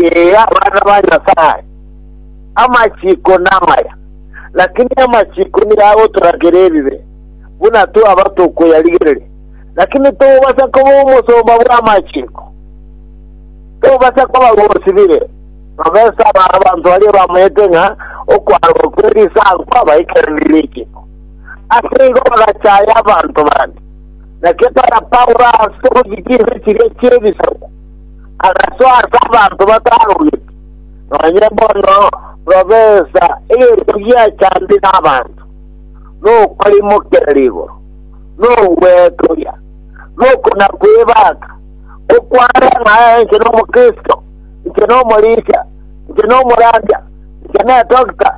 Ee, abana ba Nyasae, amachiko namaya, lakini amachiko nigo agotorakera ebibe, buna twaba tokoyarigereria. Lakini tobasa koba omosomba bw'amachiko, tobasa koba gosibire, babesa aba abanto baria bamanyete ng'a okwarwa kwe risango kwabaikeranire richiko. Ase igo bagachaya abanto bande, na kepara Paulo ase ogochia chinse chiria chi'ebisaku. agasoa ase abanto batarogeti, nonya bono robesa, egento gia chandi nabanto, nokorimokerera igoro, nogwetogia, nokona kwebaka, okware ng'a inche nomokristo, inche nomorisia, inche nomorandia, inche nedoctor,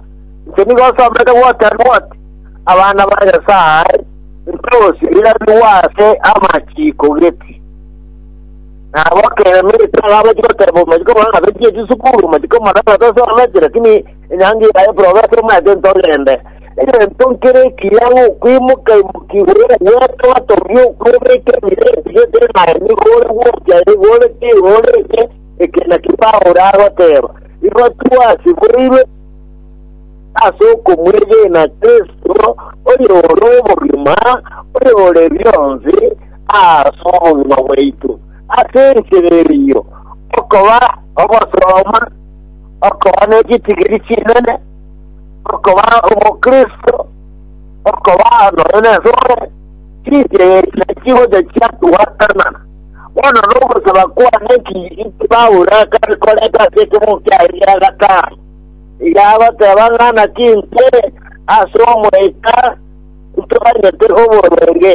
inche nigo osomete what and what, abana ba Nyasaye, intogosio irabigwe ase amachiko geti. Nabo kera emerito iga abachie goteeba omachiko bono ng'a tochie chisukuru, omachiko omodato tosometi, lakini enyangi yaye profesa omanyete ntogende. Egento nkere ekiya ng'a okwimoka imoka igoro ogwete otogie okwebeka emira ekiya etari naye nigo ore gocha igo ore ki igo ore ki, eke naki Paulo agoteeba. Igo twasiboirwe ase okomwegena Kristo, oyore obogima, oyore bionsi, ase obogima bwaito ase enchera eyio, okoba obosooba, okoba nechitigiri chinene, okoba obokristo, okoba nonya nesore, chinchera echi nachigocha chiatugwatana. Bono nogosaba kwane ki inki Paulo akare koreta ase ekemogo kiaye gia gatano? Iga agoteba ng'a naki intwe ase Omoika ntoganyete oborwenge.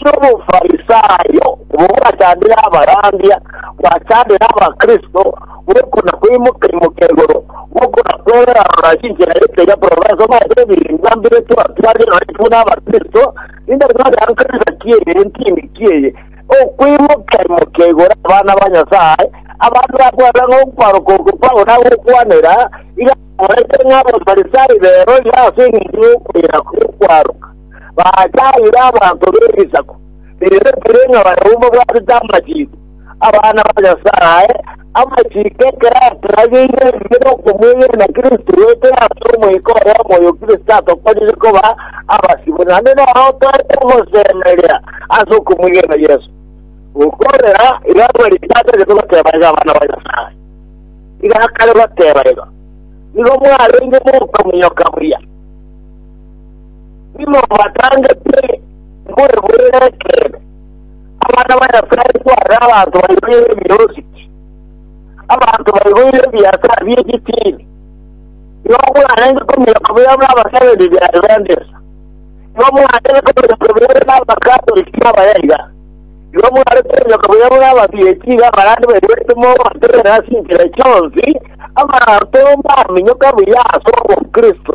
ki'Obofarisaayo bogwachandera abarandia, gwachandera Abakristo, gokuna kweimoka-imoka igoro, gokuna kwerora-rora ase enchera y'ekeria korora ensemo ase ebirengererio mbire twatwarire nonye intwe buna Abakristo, rinde tore enkanisa ki eye, entini ki eye, okweimoka-imoka igoro abana ba Nyasae, abanto bakwerora ng'a okoboroka oko Paulo agokwanera, iga bakorete ng'a Abafarisai beroria ase engencho y'okwera gw'okwaroka. baacha aire abanto b'ebisaku biretire ng'a barabwo babwatete amachiiko, abana ba Nyasae, amachiiko ekero aturageire ebibe nokomwegena Kristo goetera ase Omoika ore omoyo Kristo atokonyerie koba abasibwa. Naende noro toete gosemeria ase okomwegena Yeso. Gokorera igo abwo rigiya atagete goteba iga abana ba Nyasae. Iga akare goteba iga, Nigo mwarenge mokominyoka buya. Nimobataangete mbwebwere ekeene, abana ba Nyasae tware abanto baiboire ebirosiki, abanto baiboire ebiasara bi'egitiini, igo mwarenge komenya kobeera bw'abasereria ba Adventista, igo mwarenge komenya kobeera bw'Abakatoliki na Abayaiga, igo mware komenya kobeera bw'ababieti iga abarande baiborete mobaterere ase enchera chionsi abanto baminyoka buya ase obokristo.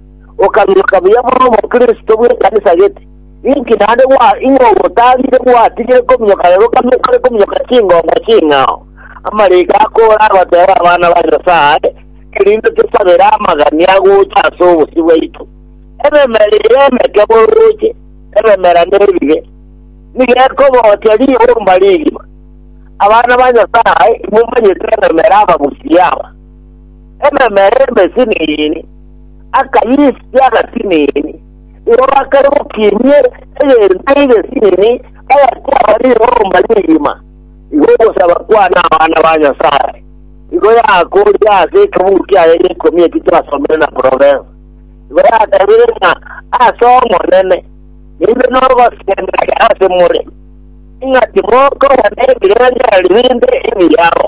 okamiroka buya bore omokristo bw'ekanisa gete, inki naende gwa ing'o ogotarire gwatigire kominyoka rero okabia okore kominyoka chingoma ching'ao? Amariga akoora agoteeba abana ba Nyasae, erinde tosabere amagani agocha ase obosio bwaito. Ememera eye emeke borooche, ememera nebibe, nigo ekobochia ribomba rigima. Abana ba Nyasae, imomanyete ememera abagusia aba. ememera emesinini, akayisia agasinini, igo bakare gokinyie egento egesinini bagakwama ribomba rigima. Igo ogosaba kwane abana ba Nyasae igo yakoorire ase ekebugu kiaye g'ekomi eki twasomire na Provensa. Igo yatebirie ng'a ase Omonene nibe nogosemeria ase more, ng'a timokobana ebirengererio binde ebiyago.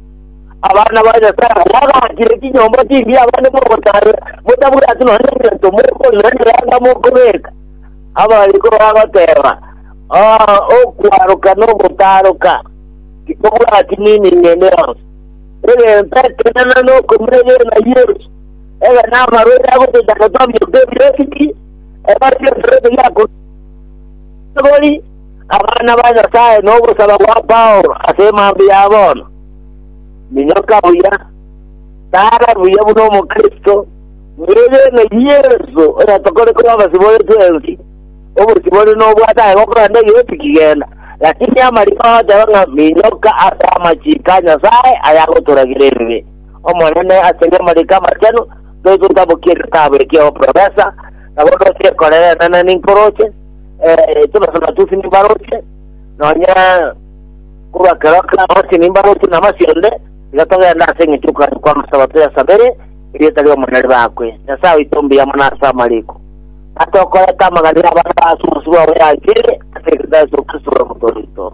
Abana ba Nyasae abwo bagachire chinyomba chimbe abande mogotabe, motabwati nonya egento mokoria onye yanga mokobeka. Abariko bagoteba, Ah, okwaroka na ogotaroka, titobwati mining ende yonsi. Egento ekenene nokomira egena Yesu, egena amarwaire agotochanda twamioka ebireeti, egena ebionsi biakorwa igori, abana ba Nyasae nogosaba gwa Paulo ase emambia ya bono. Minyoka buya, tara buya buna omokristo, mwegene Yeso oyatokore korwa abasibwa ore twensi, obosibwa ore nobwate aye gokoranda egesi kigenda, lakini amariko agoteba ng'a minyoka ase amachiko a Nyasae ayagotoragira ebibe. Omonene asegwe amariko amachenu, toigotabokia egetabu ekio oprofesa, nabo nosekorere enana ninkoroche, eh, tobasona tosi nimbaroche nonya korwa kero kabasi nimbaroche na masionde iga togenda ase eng'encho y'okogacha kwa amasabato ya sabere erieta ri'omonene ribakwe nyasae oito mbuya mono ase amariko atokorete amagana y'abana ba ase omosuba oye anchire ase Yesu Kristo ore omototo oito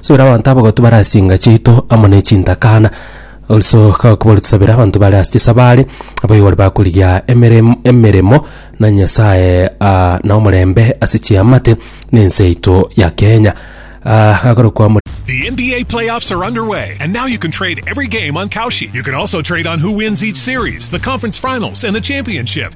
Subera abanto abo gotubare ase enga chiaito amo ne chintakana. Also kakobori tusabere abanto bare ase chisabari, abaibori bakorigia emerem- emeremo na Nyasaye ah, na omorembe ase chiamate na ense yaito ya Kenya. Ah, akorokwa amo The NBA playoffs are underway, and now you can trade every game on Kalshi. You can also trade on who wins each series, the conference finals, and the championship.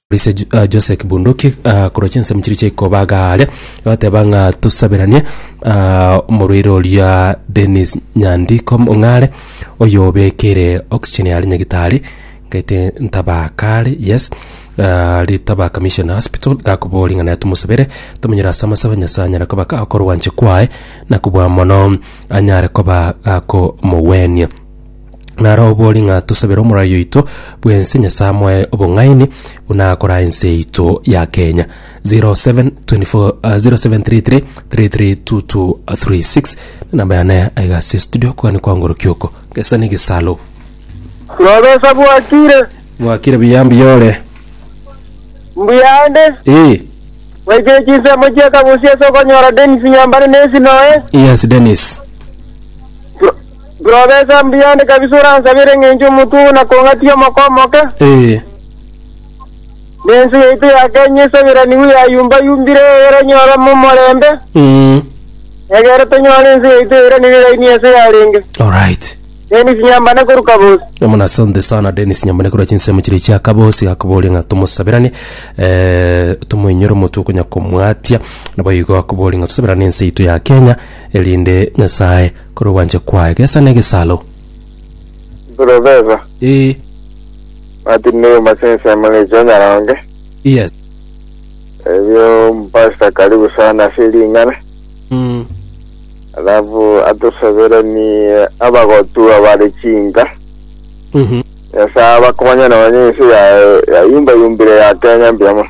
Ase Jose Kibunduki korwa chinsemo chiria chia ikoba iga are, agateba ng'a tosaberanie omorwaire oria Dennis Nyandiko Ong'are, oyobekeire oxygen are nyagitari, ng'aete Ntabaka are, yes aria Ntabaka Mission Hospital, gakoboria ng'a naye tomosabere, tomonyere ase amasabe Nyasaye anyare koba ka korwancha kwaye, na kobua mono anyare koba akomogwenia. Naro obori ng'a tosabere Omorai oito bw'ense Nyasae amoe obong'aini buna akora ense yaito ya Kenya. 0724 ah, 0733 332236 namba yane aiga ase studio kogani kwangorokia oko gesa ne gesalo Nobesa bwakire, mwakire biyambi yore mbuyande, ee waikire chinsemo chia kabusi ase okonyora Dennis Nyambane nesi noe. yes Dennis Bwobesa mbuya onde kabisa oransabere ng'encho omotwe oo nakong'atie omoko omoke, Ee. na ense yaito ya Kenya esabiranigwe yayumba-yumbire egere nyorwe momorembe, Mm. egere tonyore ense yaito eiranire iraini ense yarenge. Alright. Denis Nyambane korwa Kabosi. Namuna asante sana Dennis Nyambane korwa chinsemo chiri chia Kabosi gakoboria ng'a tomosabirane eh, tomoinyore omotwe okonya komwatia nabo igo akoboria ng'a tosabirane ense yaito ya Kenya erinde Nyasaye Korwa ogwancha kwaye gesa negesaro. Professor. Ee. Martin Neyuma ase ensemo ne chionyaronge. Yes. Ebio Pastor karibu sana ase ring'ana. Mm. Alafu atosaberanie abagotu abare chinka. Mhm. Nyasaye abakonye nonye ense ya yayumbayumbire ya Kenya mbuya mono.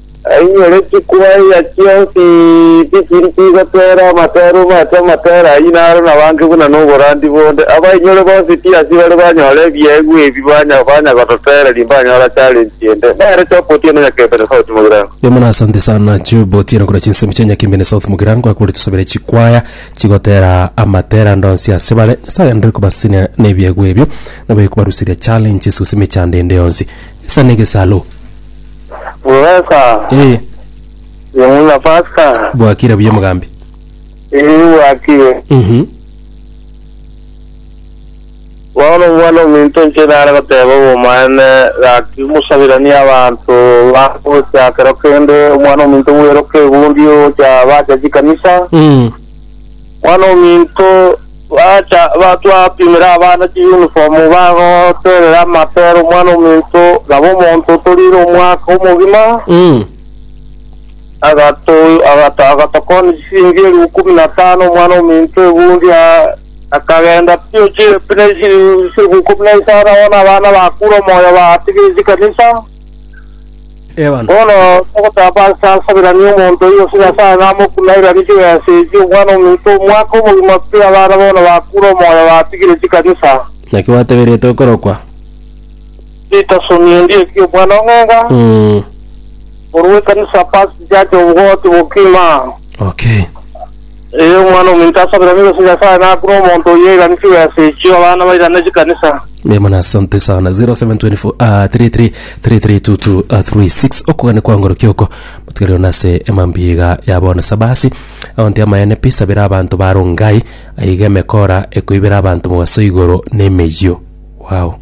Ainyore chikwa eya chionsi tichiri chigotera amatero mache amatero ayio naro nabange buna noborandi bonde. Abainyore bonsi tiasi bare banyore ebiegwa ebi banya banya gototera rimbanyora challenge ende. Nere Job Otieno Nyakembene South Mugirango. Emuno asante sana Job Otieno korwa chinsemo chia Nyakembene South Mugirango akore tusabere chikwaya chigotera amatera ande onsi ase bare. Nyasaye aenderere kobasesenia nebiegwa ebio nabaye kobaruseria challenge ase gose emechando ende yonsi. Gesa negesalo. Bweka. Eh, Yemuna pasta. bwakire buya omogambi. Iri wakire. Mhm. Bono omwana ominto nche nare goteba obomane gaki musabirani abantu bagocha kero kende omwana ominto bweroka egundi ocha bacha chikanisa. Mm. Mwana o minto, bacha batwapimere abana chiyunifomu bagotoerera amapera omwana o minto, nabo omonto otoriire omwaka omogima Mm. agato- agato- agatokoonia chisiringi elifu ikomi na tano omwana o minto ebundi a- akagenda pi chirepi na esi- chilifu ikomi na isano, abana abana bakure omoyo batigire chikanisa. Ewana. Bono togotamba ase ansabiranie omonto oyio ase Nyasae namokune airanie chirense echi, omwana ominto omwake obogima pi abana bono bakure omoyo batigire chikanisa. Naki gwateberetwe okorokwa. Ritasoni endi eki omwana o Ng'enga Mm. korwa ekanisa Past Church of God Bokima. Okay. Ee, Omwana-o-Omonto asabire omobe ase Nyasae, na buna omonto oyio oiganisigwe ase echio, abana bairane chikanisa. Mema na sante sana 0724 ah, 33 33 22 ah, 36 okogania kwa ngoro kioko motigarire ona ase emambiga ya bono sabasi aonte amayene pi sabera abanto baro ngai aiga emekora ekoibera abanto mogaso igoro nemeyio wow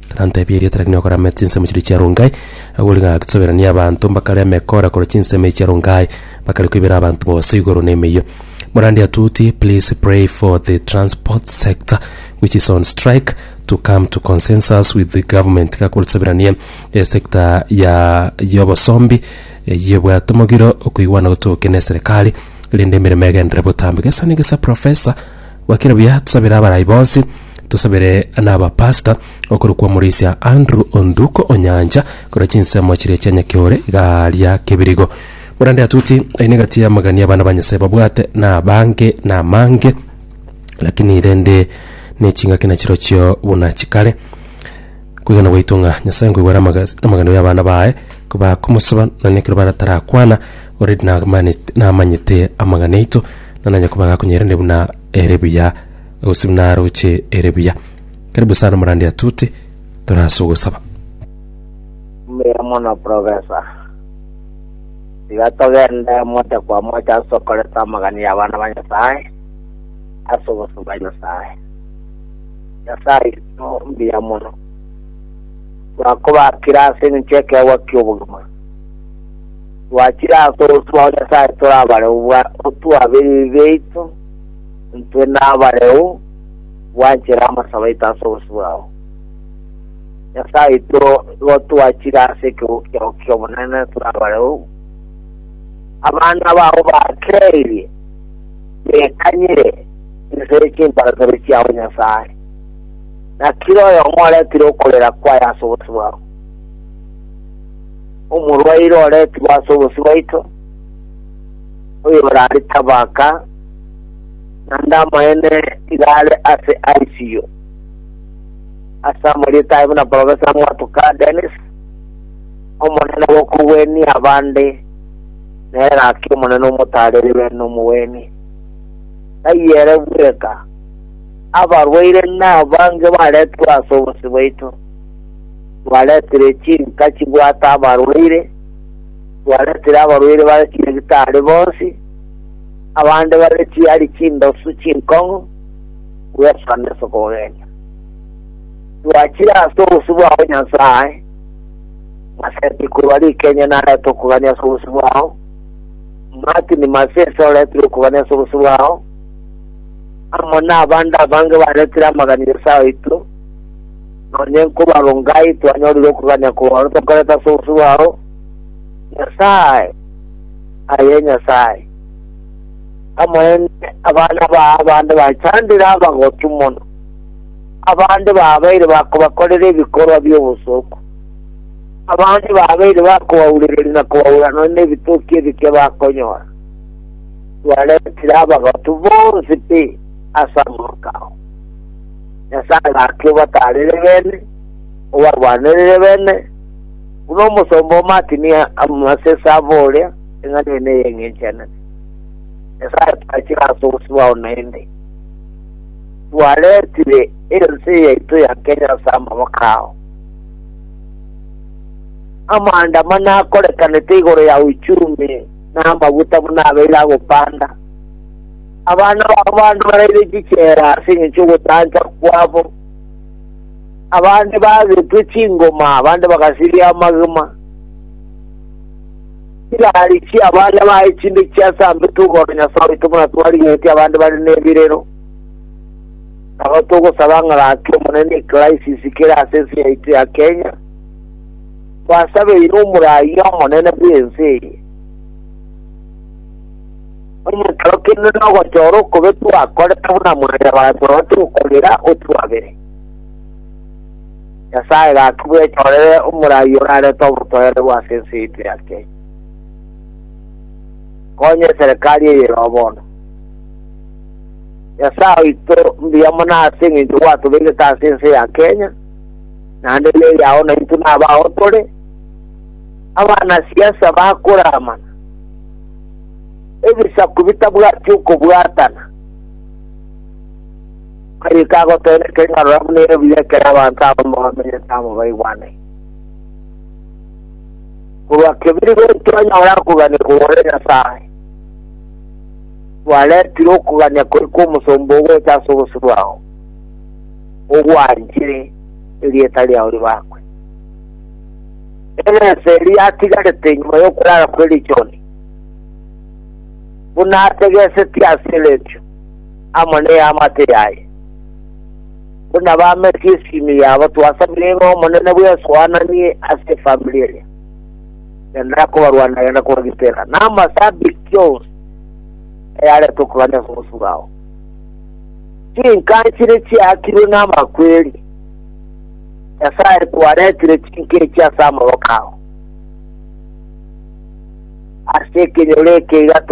Tarantebia eria tari nokorama chinsemo chiria chia Rongai, agwo rigaki tosoberanie abanto mbakarema ekora korwa chinsemo echi chia Rongai, bakare koibera abanto mobaso igoro na emeyio. Morandi atuti, please pray for the transport sector which is on strike to come to consensus with the government iga korwa tosoberanie esector ya y'obosombi eyio ebwate omogiro okoigwana gotoke na eserekari rende emeremo egenderere botambe. Gesa na egesa professor Gokira buya tusabere abarai bonsi, tosabere nabapastor okorokwa Omorisia Andrew Onduko Onyancha, korwa chinsemo chiria chia Nyakiore igaria Kebirigo. Morande atuti aine egati y'amagania abana ba Nyasae babwate nabange namange, lakini rende nechingaki nachirochio buna chikare. Kwegena gwaito ng'a Nyasae nkoigwera amagas- amagano y'abana baye, kobakomosaba, nonya ekero batarakwana Already namanet- namanyete amang'ana aito, na nanye koba gakonyeirane buna ere buya, gose buna aroche ere buya. Karibu sana omorande atute, toraase ogosaba. Mbuya mono professor. Tiga togende mocha kwa mocha ase okoreta amagani ya abana ba Nyasaye ase obosio bwa Nyasaye. Nyasaye oito mbuya mono. Twakobakire ase eng'encho y'ekeegwa ki'obogima. Twachire ase otwao Nyasae tore abareu bwa otwa ebibe biaito, intwe nabareu gwanchera amasabo aito ase obosio bwao. Nyasae oito nigo twachire ase ekegogo kiao ki'obonene tore abareu, abana bao bakeirie, bekanyire inse ye chimbarasabia chiao Nyasae, na kera oyomo oretire okorera kwaye ase obosio bwao. Omorwaire oretigwe ase obosio bwaito, oyorare tabaka, naende amaene iga are ase ICU. Ase amarieta aye buna Professor Mwatuka Dennis, Omonene gokogwenia abande nere gaki Omonene omotaareri be nomogwenie. Taiyo ere bweka, abarwaire nabange baretigwe ase obosio bwaito. Mwaretire chinka chibwate abarwaire, mwaretire abarwaire bare chinyagitari bonsi, abande bare chiari chindosu chinkong'u, gweswa neso kogenya. Twachire ase obosio bwao, Nyasae, Maseti korwa rikenya narete okogania ase obosio bwao, Martini Masese oretire okogania ase obosio bwao, amo nabande abange baretire amaganireso aoito, Nonye nkobarongai twanyorire okogania kwao tokorete ase obosio bwao, Nyasae, aye Nyasae, amoende abana baa abande bachandire abagotu mono, abande babeire bakobakorera ebikorwa bi'obosooku, abande babeire bakobaurereria na kobaura nonya nebitoki ebike bakonyora, twaretire abagotu bonsi pi ase amang'ana ao. Nyasae agaaka obatarire beene, obarwanerere beene, buna omosomba omakinia amase ase abo oria eng'ana ene eyeng'enchanete. Nyasae twachire ase obosibwa oo naende, twaretire ense yaito ya Kenya ase amaboko ao. Amaandamano akorekanete igoro ya uchumi na amaguta buna abeire agopanda. Abana bao bande baraire chichela ase engencho y'ogotancha kwabo, abande bagetwe chingoma, abande bagasiria amagima. Chiraari chia baria baye chinde chiasambete ogoro Nyasae oito buna twarigetie abande bare nebirero. Nabo togosaba ng'a gaki Omonene ecrisis kere ase ense yaito ya Kenya, twasabeire omoraia omonene bw'ense eye. Onye ekero kende nogochora okobe twakorete buna mwane basorwa tokorera otwabere. Nyasae gaki bwechorere omorai orarete obotoereru ase ense yaito ya Kenya. Konya eserekari eye ero bono. Nyasae oito mbuya mono ase eng'encho gwatobeirete ase ense ya Kenya, naende neri ao naintwe nabao tore, abana siasa bakoramana. ebisaku bitabwati okobwatana. Marika agotoera ekeng'arora buna ebuya ekero abanto abamo bamenyete amo baigwanire. Korwa kebiri goika twanyora koganikwa gore Nyasae. Twaretire okogania kori kw'omosomba ogocha ase obosio bwao, ogwanchire erieta riao ribakwe. Erese eria yatigarete nyuma y'okorara kwe richoni, buna ategesetie ase eretio amo neamate yaye, buna bametie esimi yabo, twasamire ng'a Omonene bwesoananie ase efamiri eria, genda akobarwanera genda kobagitera, na amase abiki onsi ayaretwe korwa ase omosuba ao. Chinka nchire chiakirwe namakweri. Nyasae kwaretire chinkechi ase amaboko ao. Ase ekenyoro eke iga